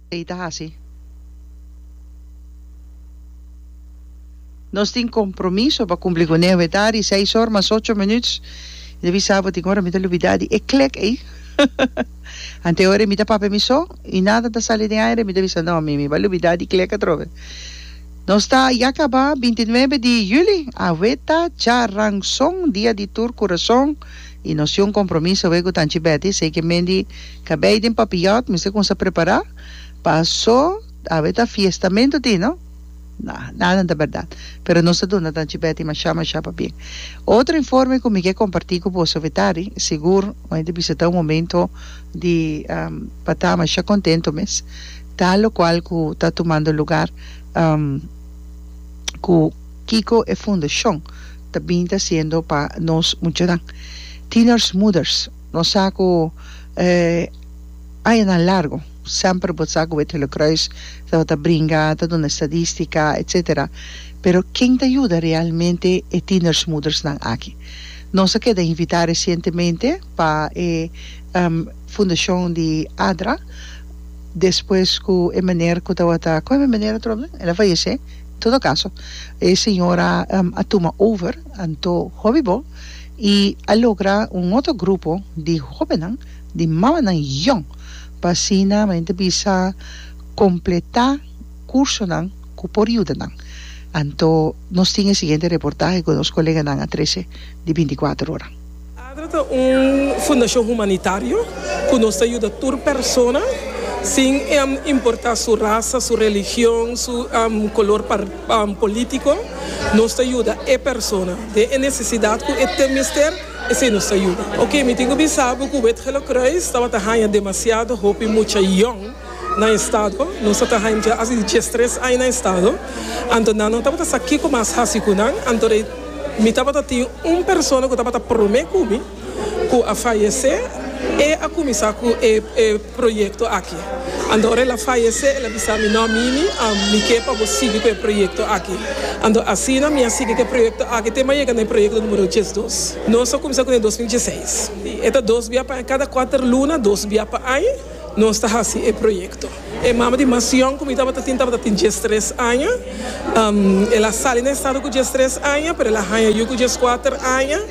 Ei ta hasi. Nos tin compromiso pa cumpli cu Neo e ta di seis or mas ocho minuut. Mi ta bisa bo tin ora mi ta lubida di e clec ei. Anteoe mi ta papia mi so y nada ta sali den aire mi ta bisa no mi mi ba lubida di clec atrobe. Nos ta ya caba bintinuebe di juli. Awe ta charanzon dia di tur curazon. y nos tin un compromiso awey cu Tanchi Betty, sey ke men di cabey den papillot mester cuminsa prepara, paso awe ta fiestamento tin no? Na, naden ta berdad, pero nos ta duna Tanchi Betty masha masha pabien. Otro informe cu mi ke comparti cu boso awe ta di, sigur bo enta bisita un momento di pa ta masha contento mes, ta locual cu ta tumando lugar cu. Kiko e fundashon ta bin ta siendo pa nos muchanan. Tieners moeders, nos sa ku e añanan largo semper bo sa ku Bethello Croes tabata bringa, ta duna estadístika, etsetera. Pero ken ta yuda realmente e tieners moedersnan aki? Nos a keda invitá resientemente pa e fundashon di ADRA despues ku e meneer ku tabata, kon e meneer atrobe nan? El a fayesé. Todo caso, e señora a tuma over anto hopi bo y a logra un otro grupo di hobennan, di mamanan yong, pa asina men ta bisa completa cursonan cu por yuda nan. Anto nos tin e siguiente reportahe cu nos coleganan a trece di binticuater ora. Adra ta un fundashon humanitario ku nos ta yuda tur persona sin importa su rasa, su religion, su kolor polítiko. Nos ta yuda e persona den e nesesidat ku e ta mester, esei nos ta yuda. Oke, mi tin ku bisa bo ku Wit Gele Kruis tabata haña demasiado hopi mucha yòn. na estado. Nos a traha en dje asi di djes tres aña na estado, anto nan no tabata sa kico mas haci cu nan, anto de mi tabata tin un persona cu tabata prome cu mi cu a fayece, e a cuminsa cu e e proyecto aki, anto ora el a fayece el a bisa mi no Mimi a mi ke pa bo sigui cu e proyecto aki, anto asina mi a sigui cu e proyecto aki te mi a yega na e proyecto numero djes dos, nos a cuminsa cu nan e dos mil dje seis, e ta dos bia pa aña cada cuater luna dos bia pa aña. Nos ta hasi e proyekto. E mama di Masion ku mi tabata tin tabata tin diestres aña. El a sali na e stado ku diestres aña, pero el a haña yu ku dieskuater aña.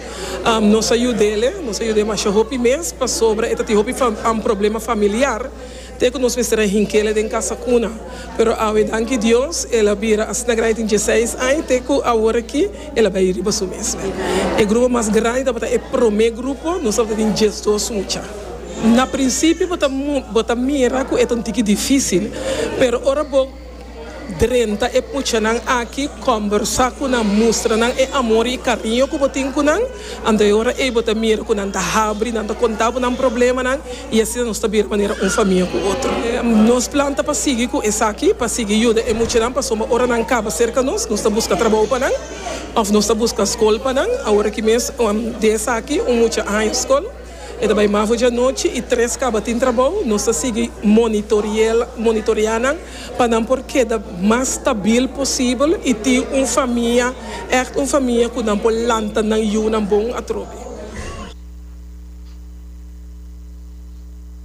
Nos a yud'el, nos a yud'e masha hopi mes pasobra e ta tin hopi problema familiar te ku nos mester a hink'el den kasa kuna. Pero awe danki Dios el a bira asina grandi tin dieseis aña te ku awor aki el a bai riba su mes. E grupo mas grandi tabata e promé grupo, nos tabata tin diesdos mucha. Na prinsipio bo ta bo ta mira ku e ta un tiki difísil, pero ora bo drenta e puchanan aki, kòmbersá ku nan, mustra nan e amor i e kariño ku bo tin ku nan, anto e ora ei bo ta mira ku nan ta habri, nan ta kontá bo nan problemanan i asina nos ta bira manera un famia ku otro. Nos plan ta pa sigui ku esaki, pa sigui yuda e muchanan pasobra ora nan kaba serka nos, nos ta buska trabou pa nan òf nos ta buska skol pa nan. Aworakí mes di esaki un mucha haña skol. E ta bai mafo djanochi i tres kaba tin trabou. Nos ta sigui monitorea nan pa nan por keda mas stabil posibel i tin un famia, ègt un famia ku nan por lanta nan yunan bon atrobe.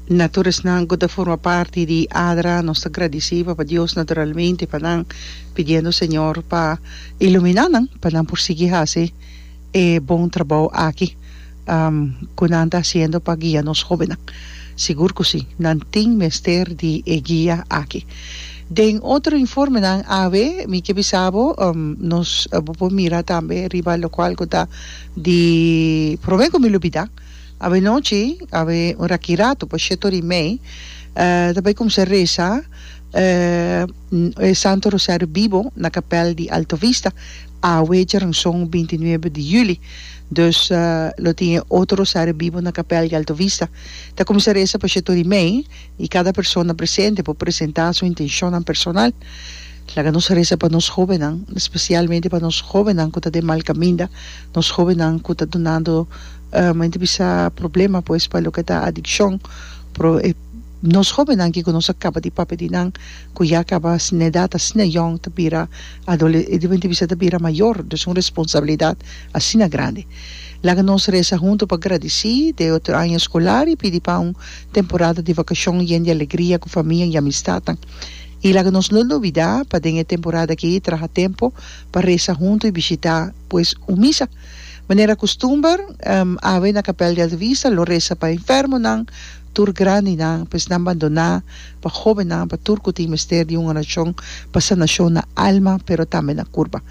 Na toresnan ku ta forma parti di adra, nos ta gradisí Papa Dios naturalmente pa nan, pidiendo Señor pa iluminá nan pa nan por sigui hasi. e bon trabou aki ku nan ta hasiendo pa guia nos hóbennan. Sigur ku sí, nan tin mester di e guia aki. Den otro informenan awe, mi ke bisa bo, nos bo por mira tambe riba lokual ku ta di promé ku mi lo bida, awe nochi, awe un rakiratu pa sheto di mei, ta bai kumsa resa e Santo Rosariu Bibo na kapèl di Alto Vista, Awe djaran son binti nuebe di juli, dus lo tin e otro rosario bibo na kapèl di Alto Vista. Ta kuminsá resa pa Shetor i mei, i kada persona presente por presentá su intenshonnan personal. Laga nos resa pa nos hóbennan, spesialmente pa nos hóbennan ku ta den mal kaminda, nos hóbennan ku ta dunando mente bisa problema pues pa loke ta adikshon, nos hóbennan ke ku nos a kaba di papia di nan. cu ya caba sin edad ta asina yong ta bira adole e debe bisa ta bira mayor dus un responsabilidad asina grandi laga nos resa hunto pa gradici de otro aña escolar y pidi pa un temporada di vacacion yen di alegria cu famia y amistadnan y laga nos no nubida pa den e temporada aki traha tempo pa resa hunto y bishita pues un misa manera costumber awe na capel di Alta Vista lo resa pa enfermonan Tur grandinan pues nan bandoná pa hóbennan pa tur ku tin mester di un orashon pa sanashon na alma pero tambe na kurpa.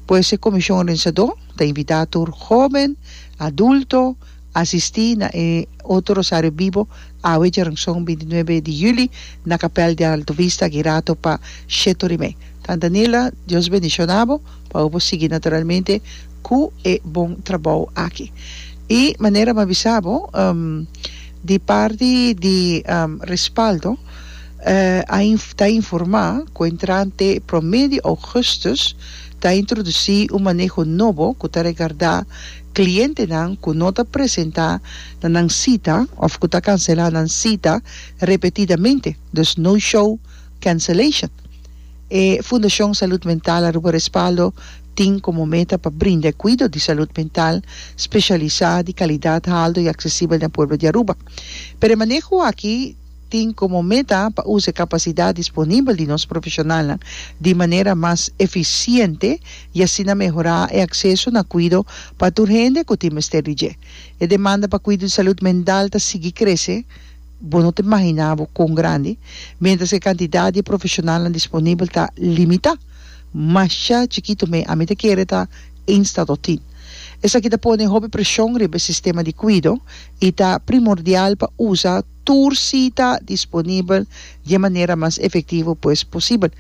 Por eso e komishon orensadó ta invitá tur hóben, adulto, asistí na e otro rosario bibo awe djaranson binti nuebe di juli na kapèl di Alto Vista aki rato pa shetorimé. Tanta Nila, Dios bendishonabo. Pa bo sigui naturalmente cu e bon trabao aki. Y manera mi a bisa bo, di parti di Respaldo a ta informa cu entrante prome di augustus ta introduci un maneho nobo cu ta regarda clientenan cu no ta presenta na nan cita of cu ta cancela nan cita repetidamente, dus no-show cancellation. E Fundashon Salud Mental Aruba Respaldo tin komo meta pa brinda e kuido di salud mental speshialisá di kalidat haldo i aksesibel den pueblo di Aruba. Pero e maneho aki tin komo meta pa usa e kapasidat disponibel di nos profeshonalnan di manera mas efisiente i asina mehorá e akseso na kuido pa tur hende ku tin mester di dje. E demanda pa kuido di salud mental ta sigui krese, Bo no ta imaginá bo kon grandi, miéntras ku e kantidat di profeshonalnan disponibel ta limitá. Masha chikitu me ami ta kere ta ein statotin. Esaki ta pone hopi preshon riba e sistema di kuido i ta primordial pa usa tur sita disponibel di e manera mas efektivo pues posibel.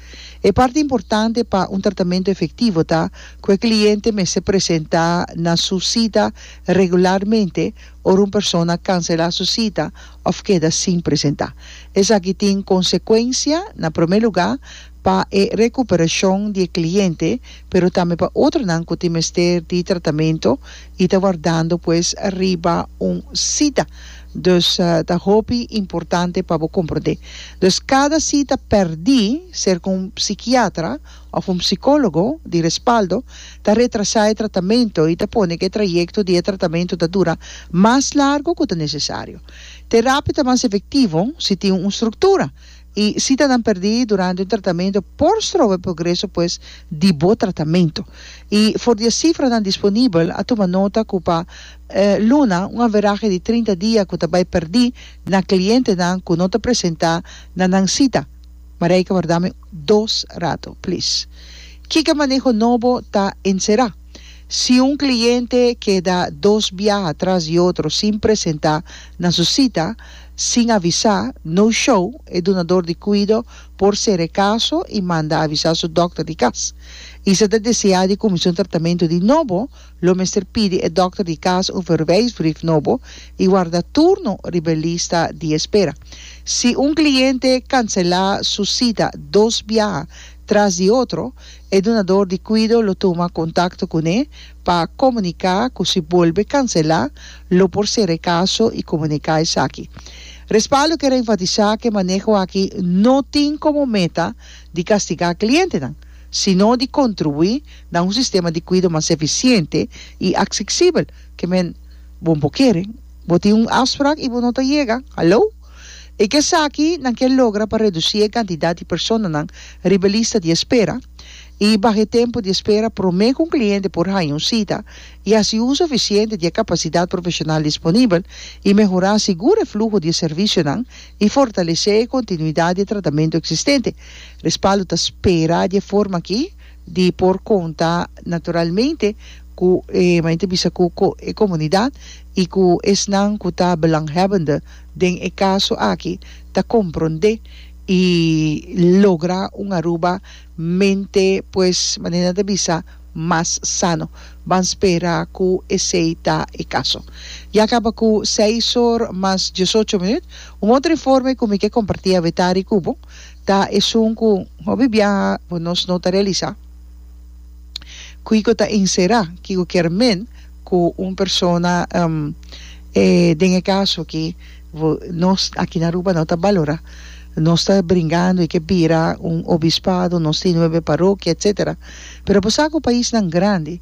E parti importante pa un tratamentu efektivo ta ku e kliente mester presentá na su sita regularmente ora un persona kanselá su sita òf keda sin presentá. Esaki tin konsekuensia, na promé lugá, pa e rekuperashon di e kliente, pero tambe pa otronan ku tin mester di tratamentu i ta wardando pues riba un sita. Dus ta hopi importante pa bo komprondé. Dus kada sita pèrdí, ser ku un psikiatra òf un psikólogo di respaldo ta retrasá e tratamentu i ta pone ku e trayekto di e tratamentu ta dura mas largu ku ta nesesario. Terapia ta mas efektivo si tin un struktura i sitanan pèrdí durante un tratamentu por stroba e progreso pues di bo tratamentu. I for di e sifranan disponibel a tuma nota ku pa luna un averahe di trinta dia ku ta bai pèrdí na klientenan ku no ta presentá na nan sita, Mareike por dame dos rato plis. Kiko maneho nobo ta enserá? Si un kliente keda dos biaha tras di otro sin presentá na su sita, sin avisá, no show, e dunador di kuido por sera e kaso i manda avisá su dòkter di kas. Isa ta deseá di kuminsá un tratamentu di nobo. Lo mester pidi e dòkter di kas un verwijsbrief nobo i warda turno riba e lista di espera. Si un kliente kanselá su sita dos biaha tras di otro, e dunador di kuido lo tuma kontakto kuné pa komuniká ku si bolbe kanselá lo por sera e kaso i komuniká esaki. Respaldo ker a enfatisá ku e maneho aki no tin komo meta di kastigá klientenan. sino di contribuí na un sistema di cuido mas eficiente y acsicibel. Ke men bo bo kere? Bo tin un afspraak y bo no ta yega? Hallo? E ke esaki nan ke logra pa reducí e cantidad di personanan riba e lista di espera y baha e tempo di espera prome cu un cliente por haña un cita y haci uso eficiente di e capacidad profesional disponibel y mehorá sigur e fluho di e servicionan y fortalecé e continuidad di e tratamento existente. Respaldo ta spera di e forma aki di por konta naturalmente ku e mayente bisa ku e komunidat i ku esnan ku ta belanghèbende den e kaso aki ta komprondé i logra un Aruba mente pues manera nan ta bisa mas sano. Ban spera ku esei ta e kaso. Ya kaba ku seis or mas diesocho minüt. Un otro informe ku mi ke kompartí awe tarde ku bo. ta esun cu hopi biaha por nos no ta realisa kico ta encera, kico kier men cu un persona den e caso aki nos aki na Aruba no ta balora, nos ta bringando y ke bira un obispado, nos tin nuebe parokia etcetera, pero bo sa cu paisnan grandi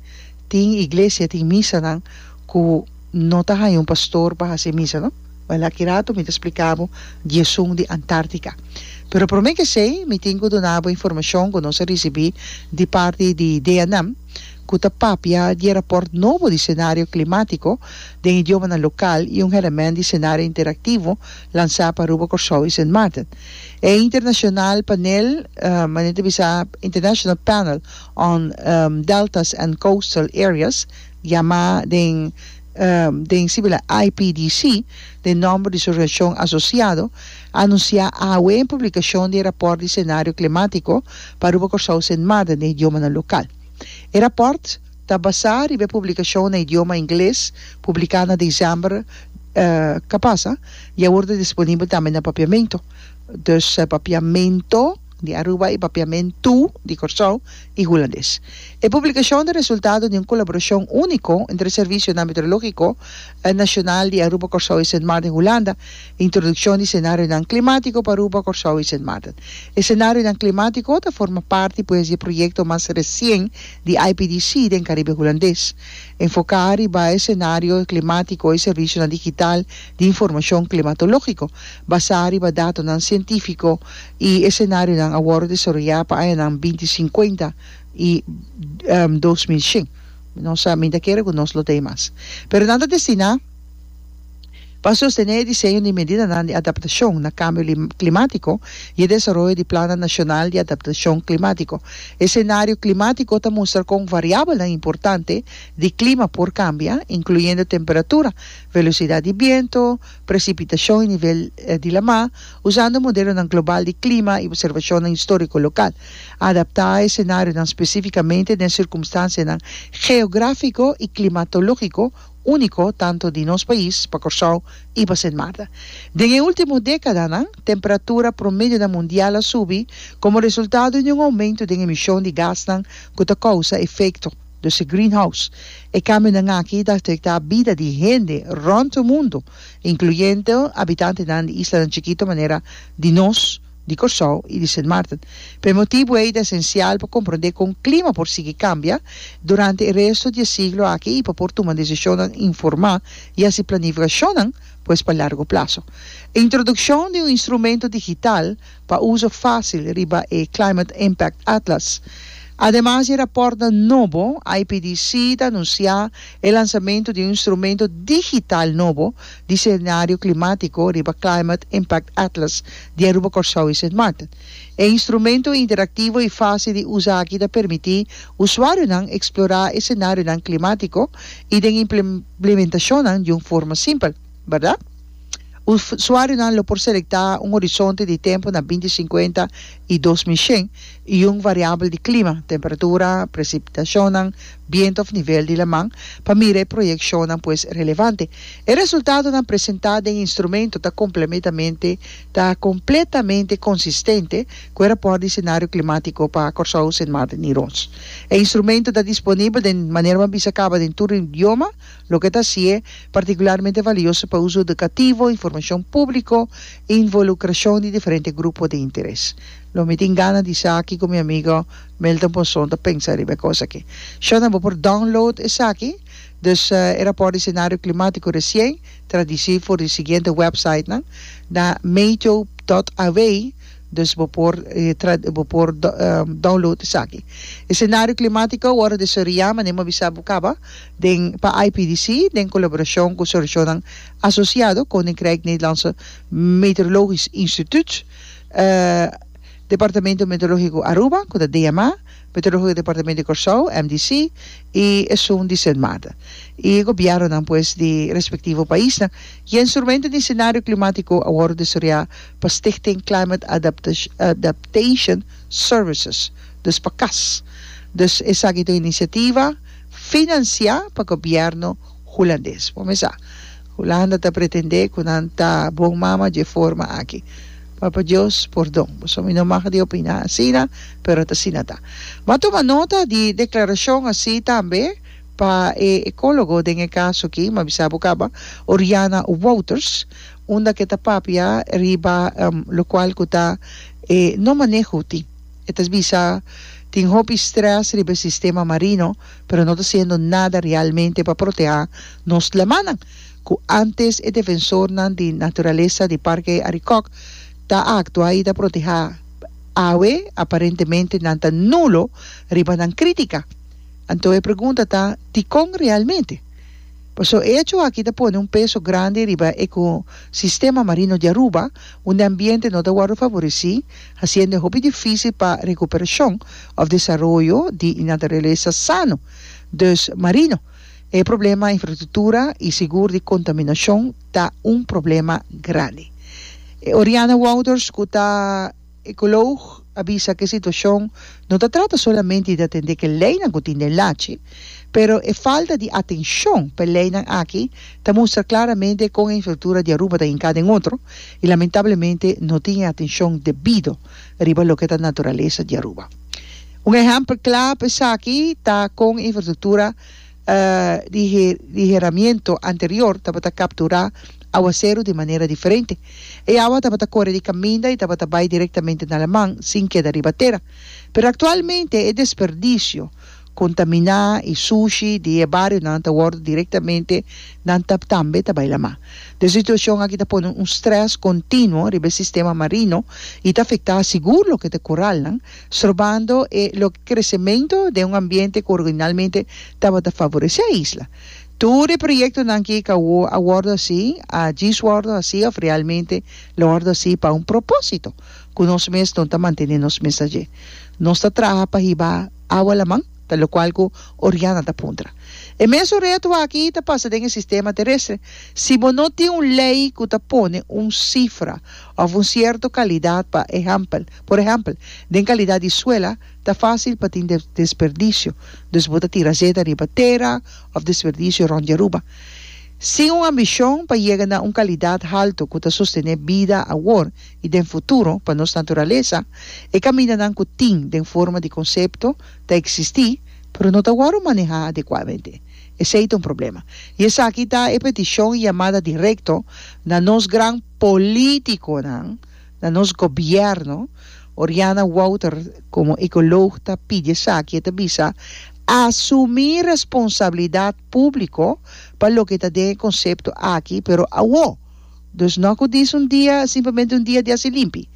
tin iglesia, tin misanan cu no ta haya un pastor pa haci misa no? Baila aki ratu mi ta splika bo diesun di Antartica. Pero prome kesey mi tin ku duna bo informashon ku nos a risibi di parti di DEANAM ku ta papia di e raport nobo di senario klimatiko den idiomanan lokal i un hèlèmènt di senario interaktivo lansá pa Aruba, Kòrsou i Sint Maarten. E internashonal panel, mane ta bisa International Panel on Deltas and Coastal Areas, yamá den. den sibila IPDC, den nomber di su reaccion asociado, a anuncia awe en publicacion di e raport di scenario climatico pa Aruba Corsou Sint Maarten den idiomanan local. E raport ta basa riba e publicacion na idioma Ingles publica na december ca pasa y awor ta disponibel tambe na papiamento, dus papiamento. di Aruba i Papiamentu di Kòrsou i Hulandes. E publikashon ta resultado di un kolaborashon úniko entre e Servicio Nameteorológiko Nashonal di Aruba, Kòrsou i Sint Maarten, Hulanda, Introdukshon di Senarionan Klimátiko pa Aruba, Kòrsou i Sint Maarten. E senarionan klimátiko ta forma parti pues di e proyekto mas resien di IPDC den Karibe Hulandes. Enfoká riba e senario klimátiko i servisionan digital di informashon klimatológiko basá riba datonan sientífiko i esenarionan a wòrdu desaroyá pa añanan binti sinkuenta i dos mil shen. Nos a minta kere ku nos lo tin mas. Pero nan ta destiná pa sostené e diseño di medidanan di adaptashon na kambio klimatiko i e desaroyo di Plannan Nashonal di Adaptashon Klimatiko. Esenario klimatiko ta mustra kon variabelnan importante di klima por kambia, inkluyendo temperatura, velosidad di biento, precipitacion y nivel di la mar, usando modelonan global di clima y observacionnan historico local. Adapta e scenarionan specificamente den circumstancianan geografico y climatologico unico tanto di nos pais, pa Corsou y pa Sint Maarten. Den e ultimo decadanan, temperatura promedionan mundial a subi como resultado di un aumento den emision di gasnan cu ta causa efecto. Dus e greenhouse. E cambionan aki ta afecta bida di hende rond e mundo, incluyendo habitantenan di islanan chikito manera di nos, di Corsou y di Sint Maarten. Pa e motibo ey ta esencial pa comprende con clima por sigui cambia durante e resto di e siglo aki y pa por tuma decisionnan informa y haci planificacionnan pues pa largo plazo. Introduccion di un instrumento digital pa uso fásil riba e Climate Impact Atlas. Ademas di e rapòrtnan nobo, IPDC ta anunsiá e lansamentu di un instrumento digital nobo di senario klimátiko riba Climate Impact Atlas di Aruba, Kòrsou i Sint Maarten. E instrumento interaktivo i fásil di usa aki ta permití usuarionan eksplorá e senarionan klimátiko i den implementashonnan di un forma simpel. Berdad? Usuarionan lo por selecta un horizonte di tempo na binti sinkuenta i dos mi shen i un variabel di clima, temperatura, precipitacionnan, biento of nivel di laman, pa mira e proyeccionnan pues relevante. E resultadonan presenta den e instrumento ta complemetamente ta completamente consistente cu e rapport di scenario climatico pa Corsou, Sint Maarten i Rots. E instrumento ta disponibel den manera bo a bisa caba den tur idioma. Loke ta si'e partikularmente valioso pa uso edukativo, informashon públiko i involukrashon di diferente grupo di interes. Lo mi tin gana di esaki ku mi amigo Milton Ponson ta pensa riba e kos aki. Shornan bo por download esaki, dus e rapòrt di senario klimátiko resien tradisí for di siguiente wèpsaitnan na meteo.aw, dus bo por bo por download esaki. E senario klimátiko a wòrdu desarroyá, mane'e mi a bisa bo kaba. den pa IPDC den kolaborashon ku soreshonnan asosiado, Koninkrijk Nederlandse Meteorologisch Instituut, Departamento Meteorológiko Aruba, ku ta DMA, Meteorológiko Departamento di Kòrsou, MDC, i esun di Sint Maarten, i gobièrnunan pues di respektivo paisnan. E instrumento di senario klimatiko a wòrdu desarroyá pa Stichting Climate Adaptation Services, dus pa cas. Dus esaki ta un inisiativa. finansiá pa gobièrnu hulandes. Bo mes sa, Hulanda ta pretendé ku nan ta bon mama dje forma aki. Papa Dios pordon, boso mi no mag di opiná asina, pero ta asina ta. M'a tuma nota di e deklarashon así tambe pa e ekólogo den e kaso aki, m'a bisa bo kaba, Oriana Wouters, unda ke ta papia riba lokual ku ta e no maneho tin. E ta bisa, Tin hopi strès riba e sistema marino, pero no ta siendo nada realmente pa protehá nos dlemannan, ku ántes e defensornan di naturalesa di Parke Arikòk ta a aktuá i ta protehá, awe aparentemente nan ta nulo riba nan krítika. Anto e pregunta ta, Dikon realmente? Paso, e echo aki ta pone un peso grandi riba eko-sistema marino di Aruba, unda e ambiente no ta wòrdu favoresí Hasiendo e hopi difísil pa recuperashon of desaroyo di naturalesa sano. Dus, marino, e problema infrastructura y sigur di contaminacion ta un problema grandi. E Oriana Wouters cu ta ecoloog a bisa cu e situacion no ta trata solamente di atende cu e leynan cu tin den lachi, pero e falta di atencion pa e leynan aki ta mustra klaramente kon e infrastruktura di Aruba ta hinká den otro i lamentablemente no tin e atenshon debido riba loke ta naturalesa di Aruba. Un ehèmpel kla pa esaki ta kon e infrastruktura di di heramiento anterior tabata kapturá awaseru di manera diferente. E awa tabata kore di kaminda i tabata bai direktamente na Aleman sin keda riba tera. Pero aktualmente e desperdisio contaminá y sushi di e barionan ta wordo directamente nan ta tambe ta bay lamá. Des situacion aki ta pone un stress continuo riba e sistema marino y ta afectá sigur loke ta coralnan, strorbando e loke crecemento den un ambiente cu originalmente tabata favorecé e isla. Tur e proyectonan ki ka a wordo hací, a djis wordo hací of realmente lo wordo hací pa un propósito cu nos mes no ta mantené nos mes adje. Nos ta traha pa hiba. Awa laman, ta lokual ku Oriana ta puntra. E mesun reto aki ta pasa den e sistema terestre. Si bo no tin un lei ku ta pone un sifra òf un sierto kalidat pa ehèmpel, por ehèmpel, den kalidat di suela, ta fásil pa tin desperdisio, dus bo ta tira zeta riba tera òf desperdisio rònt di Aruba. Sin un ambishon pa yega na un kalidat haltu ku ta sostené bida awor, i den futuro, pa nos naturalesa, e kamindanan ku tin den forma di konsepto ta eksistí, pero no ta wòrdu manehá adekuadamente. Esei ta un problema. I esaki ta e petishon i yamada direkto na nos gran polítikonan, na nos gobièrnu. Oriana Wouter, komo ekolog, ta pidi esaki, e ta bisa, Asumí responsabilidat públiko pa loke ta den e konsepto aki, pero awó. Dus no cu diz un dia simplemente un dia di haci limpi.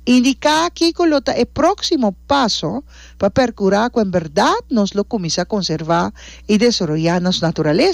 Indica kico lo ta e proximo paso pa percura cu en berdad nos lo cuminsa conserva y desaroya nos naturaleza.